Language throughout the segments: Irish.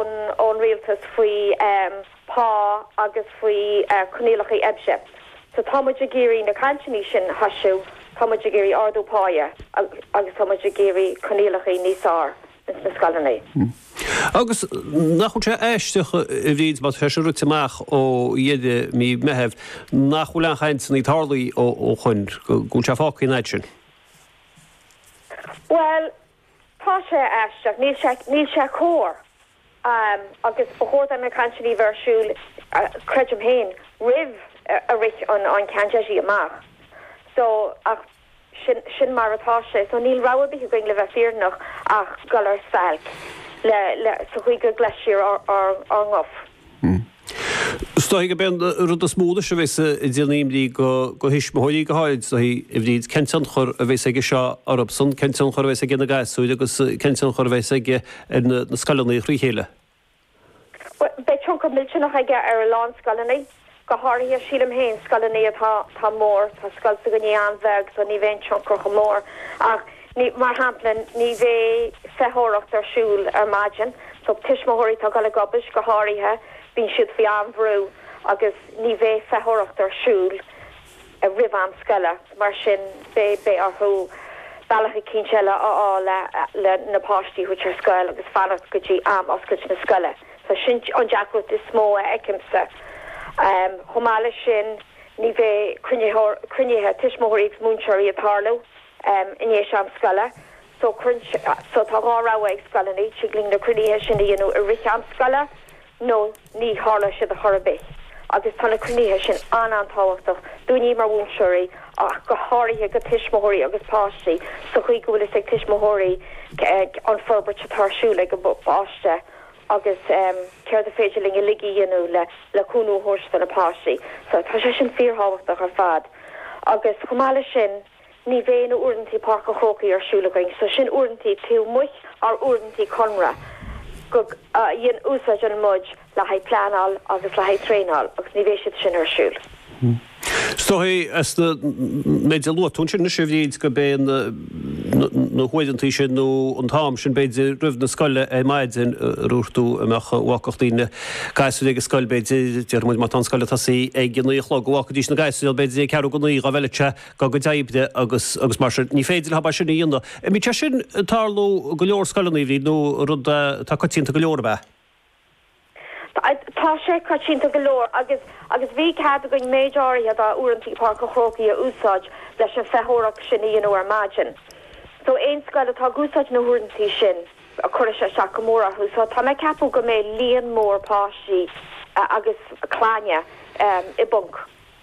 ón rialtas faoi phá agus faoi choinníollacha oibre. So tá muid ag iarraidh na cainteanna sin a threisiú, tá muid ag iarraidh ardú pá agus tá muid ag iarraidh coinníollacha níos fearr ins na scoileanna. Agus nach bhfuil sé aisteach, a Bhríd, má tá sé sin rite amach ó dheireadh mí Meithimh, nach bhfuil aon chainteanna ag tarlaí ó shoin, go bhfuil sé fágtha an fhad sin? Bhuel, Tá sé aisteach, níl sé, níl sé cóir agus ba chóir do na cainteannaí a bheith ar siúl, creidim féin, roimh a rith an mandate amach so ach sin, sin mar atá sé so níl rogha ar bith againn, le bheith fírinneach, ach dul ar stailc le, le, sa chaoi go gcloisfear ár, ár, ár nguth. Is dóigh gurb é an rud is mó anois a bheas ag déanamh imní do thuismitheoirí go háirid, is dóigh, a Bhríd, cén tionchar a bheas aige seo orthusan, cén tionchar a bheas aige ar na gasúir agus cén tionchar a bheas aige ar na scoileanna trí chéile? Bhuel, beidh tionchar millteanach aige ar a lán scoileanna. Go háirithe, sílim féin, scoileanna atá mór, tá scoil s'againne an-bheag so ní bheidh an tionchar chomh mór ach ní, mar shampla, ní bheidh feitheoireacht ar siúl ar maidin so tuismitheoirí atá ag dul ag obair, go háirithe, bíonn siad faoi an-bhrú agus ní bheidh feitheoireacht ar siúl. a roimh am scoile. Mar sin, beidh orthu bealach eicínt eile a fháil le na páistí a thabhairt ar scoil agus fanacht go dtí am oscailt na scoile. So sin an deacracht is mó a fheicimse. Chomh maith leis sin, ní bheidh cruinnithe tuismitheoirí agus múinteoirí ag tarlú in ndéis am scoile. So tá dhá rogha ag scoileanna, tig linn na cruinnithe sin a dhéanamh i rith am scoile nó ní tharlóidh siad ar chor ar bith, agus tá na cruinnithe sin an-an-tábhachtach dúinne mar mhúinteoirí ach go háirithe do thuismitheoirí agus páistí sa chaoi go bhfuil a fhios ag tuismitheoirí an forbairt atá ar siúl ag a bpáiste agus céard is féidir linn uilig a dhéanamh le cúnamh a thabhairt do na páistí so tá sé sin fíorthábhachtach ar fad agus chomh maith leis sin. Ní bheidh na uaireantaí Páirc an Chrócaigh ar siúl againn so sin uaireantaí taobh amuigh dár uaireantaí conartha go a dhéan úsáideann muid le haghaidh pleanáil agus le haghaidh traenáil agus ní bheidh siad sin ar siúl. Is dóigh as an méid a luaigh tú ansin anois a Bhríd go mbeidh na na huaireantaí sin nó an t-am sin b'fhéidir roimh am scoile ar maidin a dúirt tú a mbeadh a bhfágfadh daoine gasúir ag an scoil b'fhéidir déarfaidh muid, má tá an scoil ag tosaí ag a naoi a chlog go bhfágfaidís na gasúir b'fhéidir ag ceathrú chun a naoi dhá bhfeil sé go dtí a gcuid oibre agus mar sin. Ní féidir leo é sin a dhéanamh. Bhí sé sin ag tarlú i go leor scoileanna, an raibh, nó rud atá coitianta go leor ab ea? Tá sé coitianta go leor agus agus bhí cead againn méid áirithe de uaireantaí Pháirc an Chrócaigh a úsáid leis an feitheoireacht sin a dhéanamh ar maidin. So aon scoil atá ag úsáid na huaireanta sin, cuirfidh sé isteach go mór orthu. So tá mé ag ceapadh go mbeidh líon mór páistí agus clainne i bponc.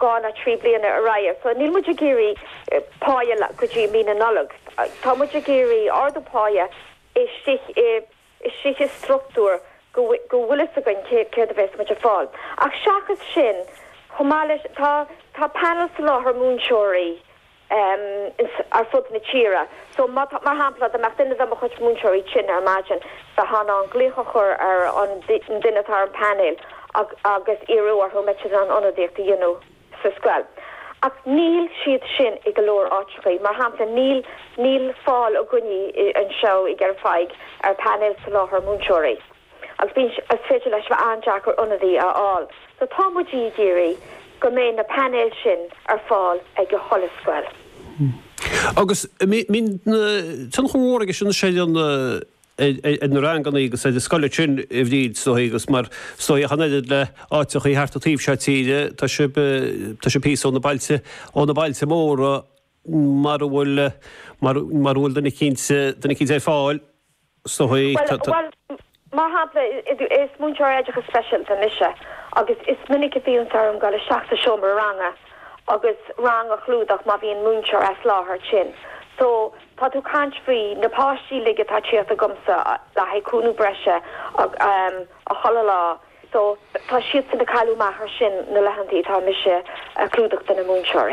dhá ná trí bliana ar aghaidh. So níl muid ag iarraidh páighe go dtí mí na Nollag. Tá muid ag iarraidh ardú páighe istigh i istigh i structúr go bhfuil go bhfuil fhios againn cé céard a bhéas muid ag fáil. Ach seachas sin, chomh maith leis tá tá panel soláthair múinteoirí ins ar fud na tíre. So, má tá, mar shampla, dá mbeadh duine de mo chuid múinteoirí tinn ar maidin, bheithá in ann glaoch a chur ar an nduine atá ar an bpainéal agus iarraidh orthu an mbeadh siad in ann ionadaíocht a dhéanamh sa scoil. Ach níl siad sin i go leor áiteachaí. Mar shampla, níl, níl fáil againní anseo i gCarna ar phainéal soláthair múinteoirí. agus bíonn sé féidir leis a bheith an-deacair ionadaí a fháil, so tá muid ag iarraidh go mbeidh na painéil sin ar fáil ag chuile scoil. Agus bíonn tionchar mór aige sin ar na ranganna agus ar na scoileanna sin, a Bhríd, is dóigh, agus mar is dóigh ach an oiread le áiteachaí thart an taobh seo tíre, tá sibh tá sibh píosa ó na bailte ó na bailte móra mar a bhfuil mar a bhfuil duine eicínt duine eicínt ar fáil. Sea. Bhuel, bhuel, mar shampla, is múinteoir oideachais speisialta mise agus is minic a bhíonns orm goil isteach sa seomra ranga agus rang a chlúdach má bhíonn múinteoir as láthair tinn. So, tá tú ag caint faoi na páistí uilig atá tíocht agamsa le haghaidh cúnamh breise chuile lá. So, tá siadsan ag cailleadh amach ar sin na laethanta atá mise ag clúdach do na múinteoirí.